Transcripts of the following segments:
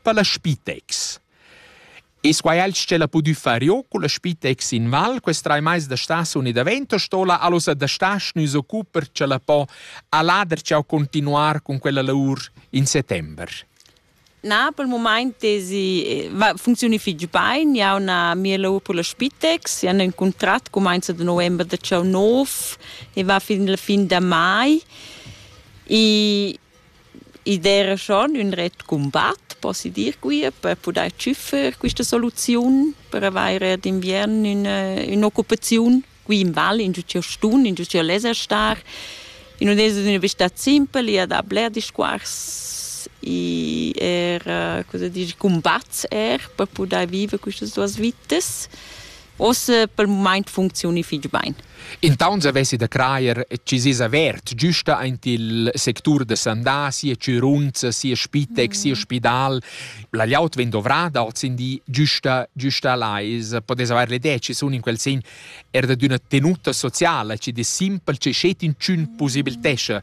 per la Spitex. E quai el la pudü far io con la Spitex in Val quest trai mais da staziun e da vento stola allosa da stas nus occuper cha la po alader ciao continuar con quella lavur in settember. Na, pel mumaint tesi eh, funzioni fich bain, ja ho una mia lavur per la Spitex, ja ho un contrat comenza da november da ciao nov e va fin la fin da mai e id era schon ün ret cumbat, possi dir quia, per pudair tschüffer quista soluziun per avaire d'inviern üna ün'occupaziun qui in val, ingio ch'eu stun, ingio ch'eu leza star. I nun es üna vista simpel, i ha da bler discuors, i eir, cosa dir, cumbats eir per pudair viver quistas duos vitas. Ossa pel mumaint funcziuni fich bain. Il tauns avessi da crajer chi s'es avert güsta aint il sectur da sandà, sia chürunza, sia spitec, sia spidal. La gliaut vegn dovrada hoz in di güsta, güsta là. I's podess avair l'idea chi sun in quel sen er da d'üna tenuta sociala chi dess simpel, chi schet inchün pusibiltescha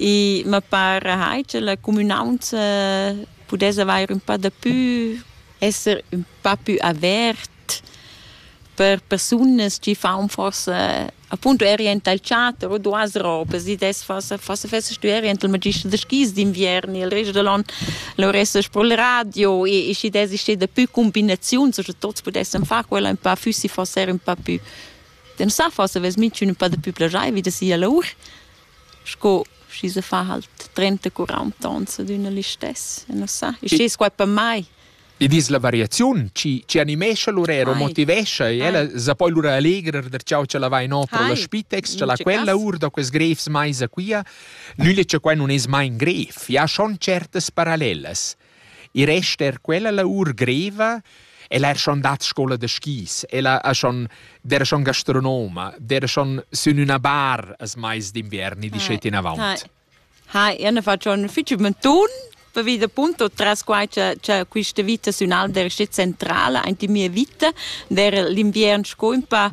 I ma para hai cha la cumünaunza pudess avair ün pa dapü, esser ün pa pü avert per persunas chi faun forsa appunto erient al teater o duas robas. I dess forsa forsa fessast tü erient al magister da skis d'inviern e il rest da l'on luressast pro il radio e e schi dess ester dapü cumbinaziuns o scha tuots pudessan far quella ün pa füssi forsa eir ün pa pü. Dann sa forsa vess minchün ün pa dapü plagiaivi da sia lour. sco schi se fa halt trenta quaranta ons ad üna listess, non sa, il stes quai per mai. Id es la variaziun chi chi animescha lur eiro, Ai. motivescha e ella sa poi lura allegrer der ciao cha la vai no pro la Ai. Spitex, cha In la ce quella cas. our da quels grefs maisa quia. Nügl che quai nun es mai in gref, i ha schon certas parallelas. I resta er quella lavur greva. El ha schon dat scola da skis, el ha schon der schon gastronoma, der schon sün üna bar as mais d'inviern e dischet inavant. Ha, io ne faccio un ufficio mentun, vi da punto tras quai che, che questa vita sün Alder è centrale, anche mia vita, der l'inviern sco un pa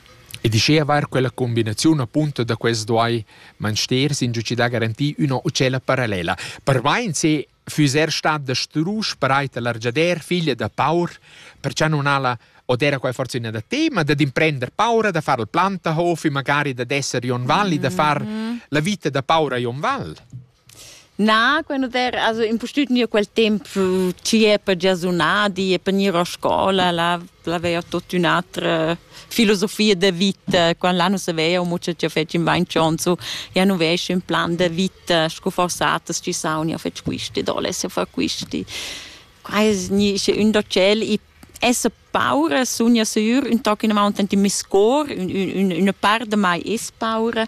Ed uschia vair quella combinaziun apunta da quels duai Mansters insatgi da garantir üna otschella parallela. Per vain se füss er stat da strusch pareit a l'argiader figlia da paur, perciò non ha la od era quai forse üna da tema da d'imprender paura da far il plantahof e magari da d'esser Jon Val e da far la vita da paura a Jon Val. Na, quando der also impustüt gnir quel temp chi è per gia sunà di e per gnir a scoula, là l'avea tuot ün'atra filosofia da vita. Quand là nu savea amo cha cha fetsch in vain chonso, ja nu vesc ün plan da vita scu forsaters chi saun, ja fetsch quisti, do less jo far quisti. Qua es gni sche ün da tschel i esser paura sun ja sür ün toc inavaunt ant in meis cor, ün, ün, üna part da mai es paura.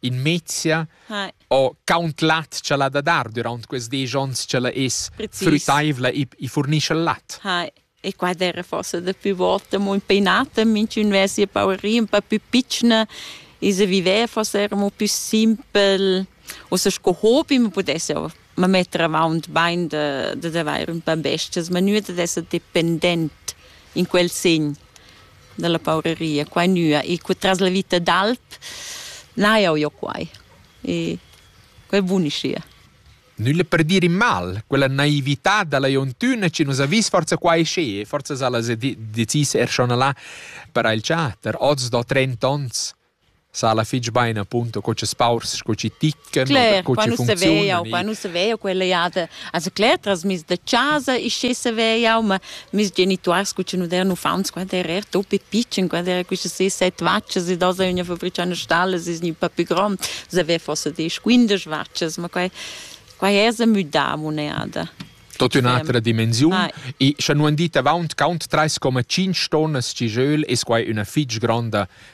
in mezia Hi. o count lat cha l'ha da dar durant quels desch ons cha la es Precis. früttaivla e, e furnischa lat. Hi. E qua era forse da più volte molto impegnato, minch'un aveva sia paurina un po' più piccina e se viveva forse era un po' più simpel, o se sco hobby, ma potesse ma metter avaunt bain da, dad avair ün pa bestias, ma nua dad esser dependent in quel segn da la pauraria, qua e nua. E cu tras la vita d'alp n'ha jau jo quai. E quai buniscia. Nulla per dir in mal, quella naività da la Jontuna che nus ha vis forza qua e sche, forza sa las decis er schon là per il chatter, oz da trenta onns. sa alla fitg bein appunto co che spaurs sco ci ticken Claire, co ci funziona qua nu se veia quella jada also Claire tras mis da casa e sche se veia ma mis genituars cu ci nu der nu faunts qua der er topi pitchen qua der queste se set vacces e da sa una fabriciana stalle is ni pa più grand se ve fosse des 15 vacces ma quai qua è se müda moneda tot un'altra dimensione e sche non dit avant count 3,5 tonnes ci jeu es quai una fitg granda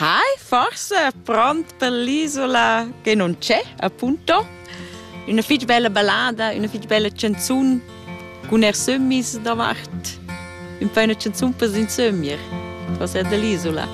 Hai forse pront per l'isola che non c'è, appunto. Üna fich bella ballada, üna fich bella canzun cun er sömmis davart. Ün po üna canzun per s'insömir, forse er dell'isola.